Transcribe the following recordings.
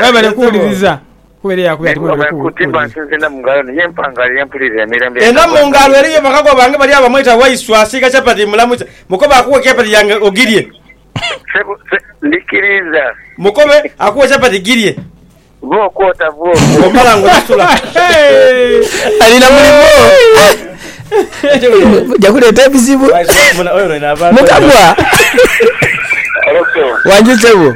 Mwebale kuwuliriza, kuba era yakubye ati mwebale kuwuliriza. Eno mu ngalo eriyo bakago bange bali agho bamweta Waiswa asiiga chapati mulamuza mukobe akuwe chapati yange ogirye. Mukobe akuwe chapati girye. Bwomala nga osasula. Alina mulimo muja kuleeta ebizibu mukabwa. Wangi sebo.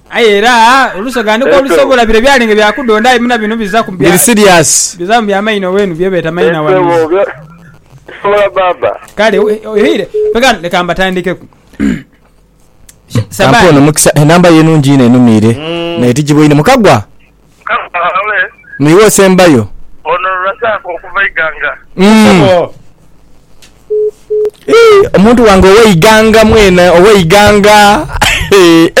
Aye era olusoghaaniko olusobola bire byali nga bya kudhondha aye muna bino biza ku Biri serious. biza mu bya maina owenu bye beeta maina Nsebo wanizi. bya bisobola baaba. Kale we- oire pega leka mbatandikeku. Sha- Kampe ono Sabani. mukisa enamba ye nungi inho enumiire naye tijibwa inho mukagwa Kaale. Ni iwe osembayo. Ono Razak okuva Iganga. Ssebo. Eeh, omuntu wange owe Iganga mwena, owe Iganga. Eh,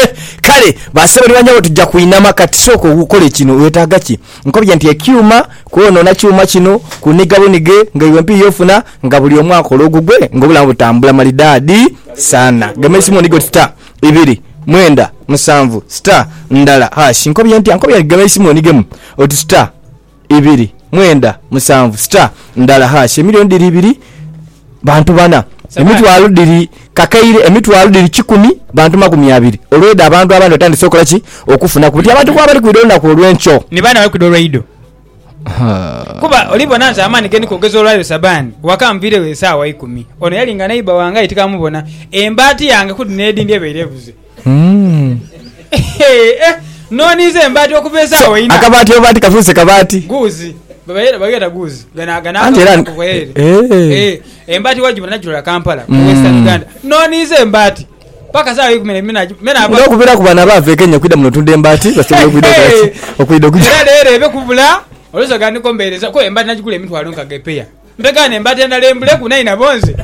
kale basebo ni banyabo tujja kwinama kati sooka okole kino wetaaga ki? Nkobye nti ekyuma kwonoona kyuma kino kuniga bunige nga iwe mpiiya ofuna nga buli omu akola ogugwe nga obulamu butambula malidaadi sana. Gema eisimu onige oti ta. ibiri, mwenda, musanvu, star, ndala, hash. Nkobye ntya? Nkobye aligaba eisimu onigemu oti star, ibiri, mwenda, musanvu, star, ndala, hash. Emilioni dhiri ibiri, bantu bana. Emitwalo dhiri kakaire, emitwalo dhiri kikumi, bantu makumi abiri. Olwedha abantu abandi batandise okola ki? Okufunaku. Buti abantu bwebali kwidha olunaku olwenkyo. Ni baana bali kwidha olweido. Kuba oli bona nti amaani ge ndi kwogeza olwa leero Sabani waka anviiregho esaawa ikumi. Ono yali nga neighbour wange aye tikamubona. Embaati yange ku dhino edhindi ebaire ebuze. Nooniiza embaati okuva esaawa ina. Akabaati oba ti kafuuse kabaati? Guuzi. Bageeta guuzi. Gano akantu ako gheeri. Embaati wagibona nagirola Kampala mu Western Uganda. Nooniiza embaati. Paka saa eikumi ne bina me na ba. Nga okubiraku bano abaava e Kenya okwidha muno otunda embaati basobola okwidha okola ki? Okwidha okugya. Era leero ebe kubula olusoga nga ndiko mbeereza kuba embaati nagigula emitwalo nkaga epeya. Mpegaane embaati endala embule ku nainabo nze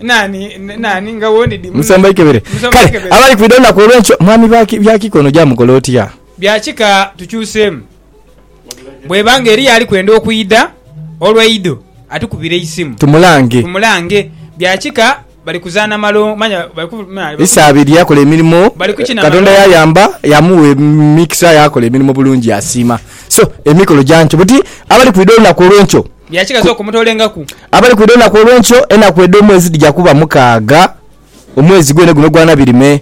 nani nani nga wondi di muno. Musomba ikebere. Musomba Kale ikebere. abali kwidha olunaku olwenkyo mwami baki bya kika ono gyamukola otya? Bya kika tukyuseemu. Bw'eba nga eriyo ali kwenda okwidha olw'eidho atukubire eisimu tumulange. Bya kika bali kuzaana malongoofu. Isabirye yakola emirimo Katonda yayamba yamugha emikisa yakola emirimo bulungi yasiima. So emikolo gya nkyo buti abali kwidha olunaku olw'enkyo. Bya kika sooka omutoolengaku. Abali kwidha olunaku olw'enkyo enaku edh'omwezi dhija kuba mukaaga omwezi gwene guno ogwa Nabirime.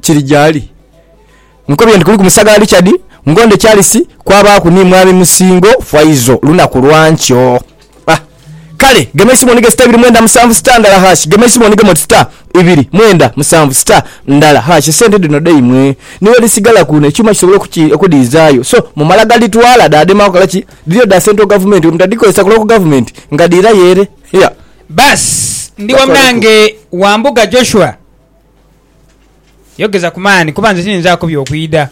kiri gyali. Nkobye nti kuliku Musagala Richard, Ngonde Charles kwabaaku ni Mwami Musingo Faizo lunaku lwa nkyo. A. Kale gema eisimu onige star ibiri mwenda musanvu star ndala hash gema eisimu onigemu oti star ibiri mwenda musanvu star ndala hash esente dhino dhaimwe ni bwe dhisigala kuno ekyuma kisobole okudhiizaayo so mumala gadhitwala dhaadema kukola ki? Dhiriyo dha Central Gavumenti bwe mutadhikozesa ku Local Gavumenti nga dhiirayo ere. Yea. Baasi, ndi wamu nange Wambuga Joshua Yogeza ku maani, kuba nze tiyinzaaku by'okwidha.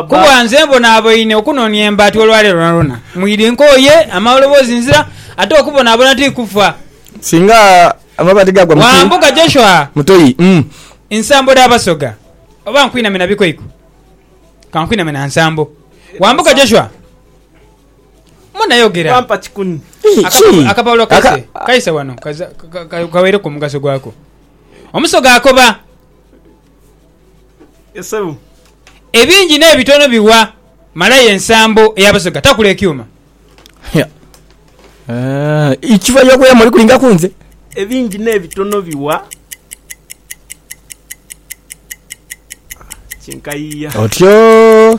Kuba nze mbonaaboine okunonia embaati olwaleero lwonalwona. Mwidhi nkooye, amaloboozi nzira, ate okubonaabona ti kufa. Wambuga Joshua nsambo dha basoga, oba nkwiname na bikoiko? Ka nkwiname na nsambo. Wambuga Joshua, muna yogera. Akapapula kaise wano kaweereku omugaso gwako. Omusoga akoba. Ebingi n'ebitono biwa Malaya ensambo ey'Abasoga. Takula ekyuma. Ikiva y'okuya muli kulinga ku nze. Ebingi n'ebitono biwa Kinkayia. Otyo.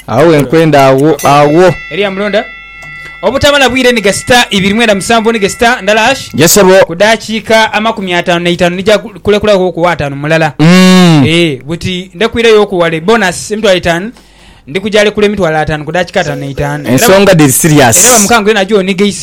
Agho wenkwenda agho agho. Eriya mulonda. obutamala bwire ni gasita ibiri mwenda musanvu ni gasita ndala ash Yes sebo. ku dakiika amakumi ataanu na itaanu nija ku- kulekulagho okuwa ataanu mulala. Mm. Ee, buti ndekuireyo okuwale bonus emitwalo etaanu ndi kujalekula emitwalo ataanu ku dakiika ataanu na itaanu. Era ba- Ensonga dhiri serious. Era bamukango yena aje onige eisimu.